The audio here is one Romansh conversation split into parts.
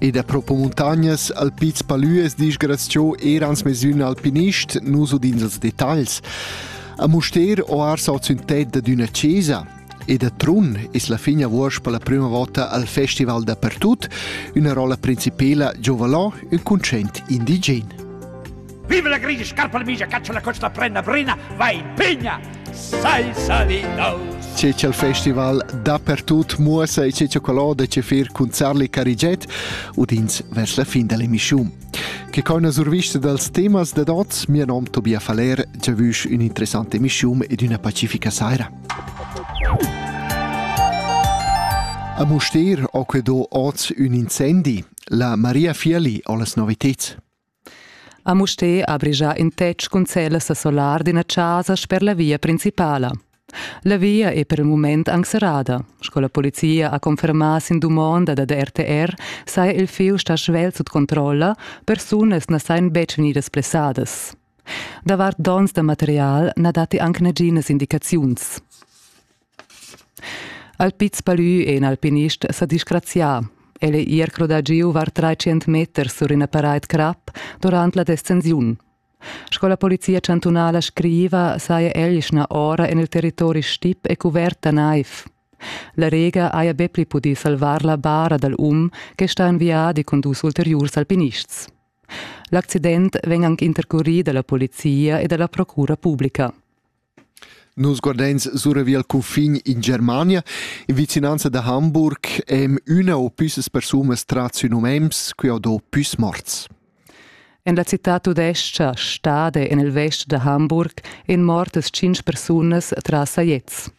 E da propo muntagnas al Piz Palües disgraziò erans mesün alpinist, nus udins els detagls. A Muster ho ars ot sün ted ad üna chesa, e da Trun es la fin avuors per la prüma vota al Festival dappertut, üna rolla principela giovanò, ün concent indigen. Viva la grigia scarpa migia, caccia la coccia prenda brina, va in pigna, sai salidaus. C'è c'è il festival dappertut muossa e c'è c'è quello de c'è fir cun Zarli Cariget udins vers la fin dell'emissione. Che coi survista dals temas de dots, mio nom Tobia Faller, già vusch un'interessante emissione ed una pacifica saira. A Muster ho que do oz un incendi. La Maria Fiali ho las noviteds. A Mustér ha brigia in tetg cun cellas a solar d'ina chasa sper la via principala. La via è per il mument anc serrada. Sco la polizia ha confermà sin dumonda dad RTR saja il fieu stà svelt sut controlla, persunas na sajan betg vegnidas blessadas. Davart donns da material na datti anc naginas indicaziuns. Alpits Palü è in alpinist sa disgrazià. El è ier crodà giu var 300 meter sur ina paraid crap durant la descensiun. Sco la polizia chantunala scriva, saja Elschna ora en il territori stip e cuverta naiv. La Rega haja be pli pudì salvar la bara dal um che sta en viadi cun dus ulteriurs alpinists. L'accident vegn anc intercurì da la polizia e da la procura publica. Nus guardeins suravia al cunfin in Germania. In vicinanza da Hamburg em üna o püssas persunas trat sü num Ems, qui ho do püs morts. En la citad tudescha Stade en il vest da Hamburg en mortas tschintg persunas tras Sajets.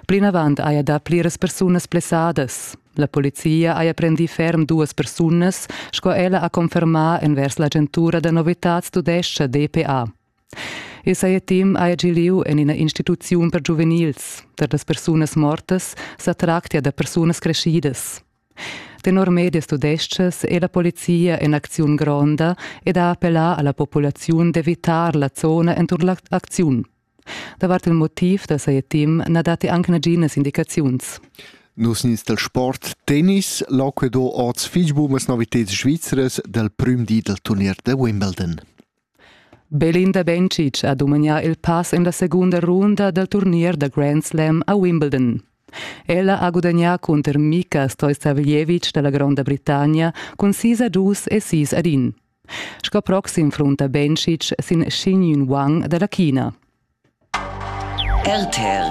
Plinavant haja dà pliras persunas blessadas. La polizia haja prendì ferm duas persunas, sco ella ha confermà envers l'agentura da novitads tudescha DPA. Il saja temp haja gì lieu en ina instituziun per giuvenils. Per las persunas mortas sa tractia da persunas creschidas. Tenor medias tudestgas è la polizia en acziun gronda ed ha appellà a la populaziun d'evitar la zona enturn l'acziun. Davart il motiv da saja team na datti anche naginas indicaziuns. Nus nins del sport tennis, l'Auquedo orts fich bumas novitads svizzeras del prüm di del turnier de Wimbledon. Belinda Bencic ha dumagnà il pass en la segunda runda dal turnier da Grand Slam a Wimbledon. Ella ha gudagnà cunter Mika Stojsaveljevic da la Gronda Britannia cun sis a dus e sis ad in. Sco proxim frunta Bencic sin Xingyun Wang da la China. RTL,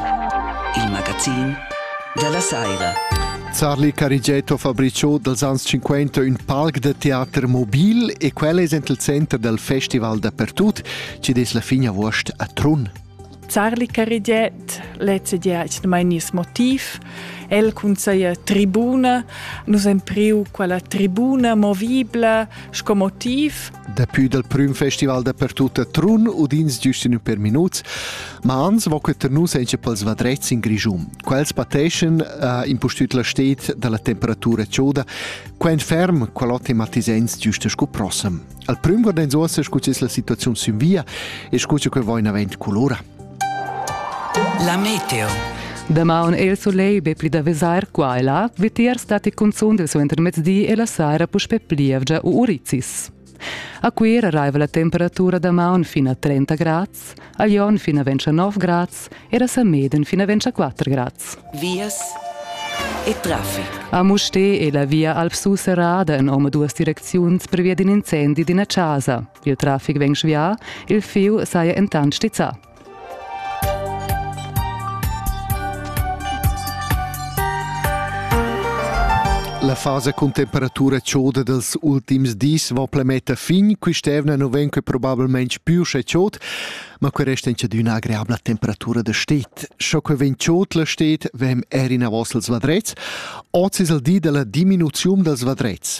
il magazin della saira. Charlie Carigetto Fabriciò dals ans 50 ün palc da teater mobil e quel es ent il center dal festival dappertut ci des la fin avuost a Trun. Charlie Cariget lecedia its mai nis motiv. El cunseia tribuna. Nus empriu quella tribuna movibla sco motiv Daplü dal prüm festival dapertut a Trun udins giust in ün per minuts, ma ans vo que tar nus encha pels vadrets in Grischun. Quels pateschan uh, impustüt la sted da la temperatura choda, quain ferm qual ho tematisens giust scu prossem. Al prüm guardains uossa scu es la situaziun sün via e scu cha que vo in avant culura. La meteo. Damaun è il solegl be pli da vesair qua e là, vitiers datti cunzunt il suentermezdi e la saira puspè plievgia u urizis. A Cuira arriva la temperatura damaun fin a 30 grads, a Lyon fin a 29 grads e a Sameden fin a 24 grads. Vias e traffic. A Mustè è la via Alp Susserrada en omaduas direcziuns previa d'in incendi d'ina casa. Il trafic vegn svià, il fieu saja entant stizzà. La fasa cun temperatura choda dels ultims dis va plemetta fin, quist'evna non ven que probabilment più sche chod, ma que resta in d'üna agreabla temperatura de stet. Scho que ven chod la stet, vem er in avos els vadrets, oz es el di della diminuzium dels vadrets.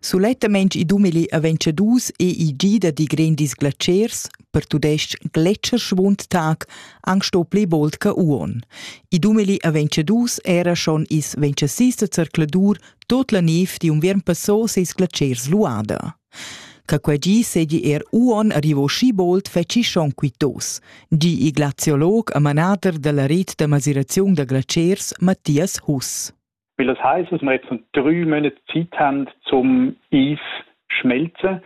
Sulettamain i dumeli aventcha dus EIG da digren disglatschers per tudesc gletscher schwund tag anc sto pli bold ca uon. I dumeli aventcha dus era schon is ventcha sis da zercladur tot la niv di unviern passò seis glatschers luada. Ca quai gi segi er uon arrivo schi bold feci schon quitos, gi i glaziolog a manader dalla rit da masiraziun da glatschers Matthias Huss. Weil das heißt, dass wir jetzt drei Monate Zeit haben, zum Eis schmelzen,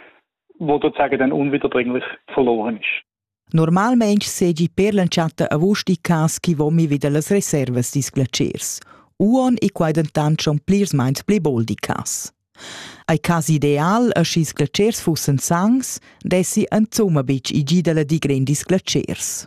wo sozusagen dann unwiederbringlich verloren ist. Normalmente seigi per l'entschatta avust i cas chi vomi vida las reservas dis glaciers. Uon e quai dentant schon plirs meins pli boldi cas. Ai cas ideal a schis glaciers fussen sangs, dessi en zuma bitg i gidala di grendis glaciers.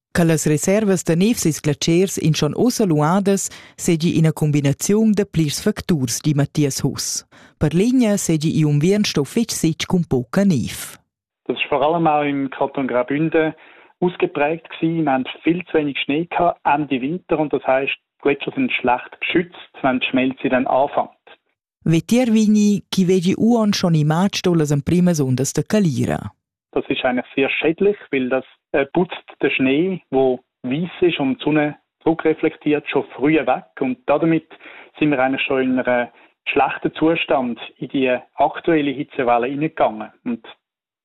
Che las reservas da nevs e sglatschers in schon ussa luadas seigi ina combinaziun da plirs facturs, di Matthias Huss. Per linea seigi igl unviern sto fetg sitg cun poca nev. Das ist vor allem auch im Kanton Graubünden ausgeprägt gewesen. Wir haben viel zu wenig Schnee gehabt, Ende Winter und das heißt, die Gletscher sind schlecht geschützt, wenn die Schmelze dann anfängt. Vetier vegni chi vegi uon schon imatg sto las emprimas undas da calira. Das ist eigentlich sehr schädlich, weil das äh, putzt den Schnee, wo weiss ist und die Sonne zurückreflektiert, schon früh weg. Und damit sind wir eigentlich schon in einem schlechten Zustand in die aktuelle Hitzewelle hineingegangen. Und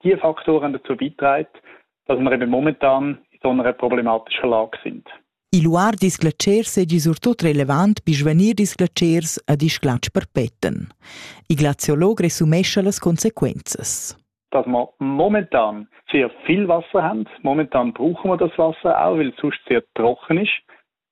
die Faktoren dazu beitragen, dass wir eben momentan in so einer problematischen Lage sind. Il luar disglacer segi surtut relevant per svanir disglacers ad isglatsch perpeten. Il glaziolog resumescha las consequences. Dass wir momentan sehr viel Wasser haben, momentan brauchen wir das Wasser auch, weil es sonst sehr trocken ist,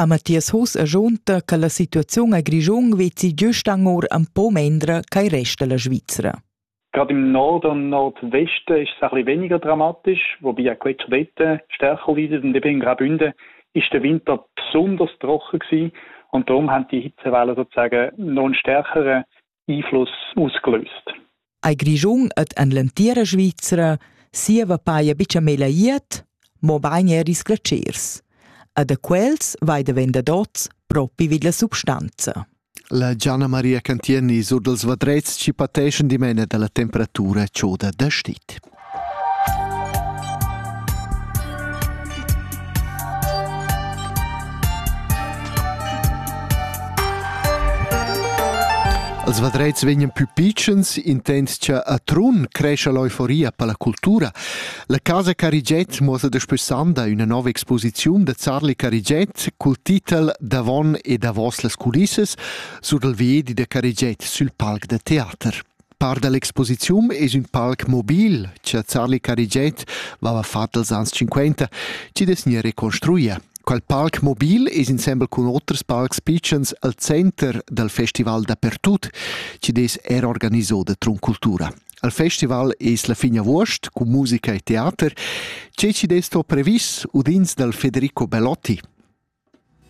A Mathias Huss agiunta che la situaziun a Grischun vezi giust anor un po mendra ch'ei resta la Svizra. Gerade im Norden und Nordwesten ist es ein bisschen weniger dramatisch, wobei auch jetzt dort stärker leidet. Und eben in Graubünden ist der Winter besonders trocken gewesen. Und darum haben die Hitzewellen sozusagen noch einen stärkeren iflos usclust. Ei Grischun ed en l'entira Svizra sieva paia bicha mela iert, mo bain er isglatschers. E da quels vai da vendadots propi vid la substanza. La Gianna Maria Cantieni sur dels vadrets ci pateschan dimena da la temperatura choda da stit. Als vadrets vegnan pü pitschens intendgia a Trun crescha l'euforia per la cultura. La casa Carigiet muossa daspö sanda üna nova exposiziun da Zarli Carigiet cul titel Davon e davos las culissas sur dal viedi da Carigiet sül palc da teater. Part da l'exposiziun es ün palc mobil cha Charly Carigiet vaiva fat als ans 50 chi'd es gnir reconstruia. Quel palc mobil es insembel cun oters palcs pitschens al center dal festival dapertut chi'd es eir organiso da Trun Cultura. Al festival es la fin avuost cun musica e teater. Che chi'd es sto previs udins dal Federico Belotti.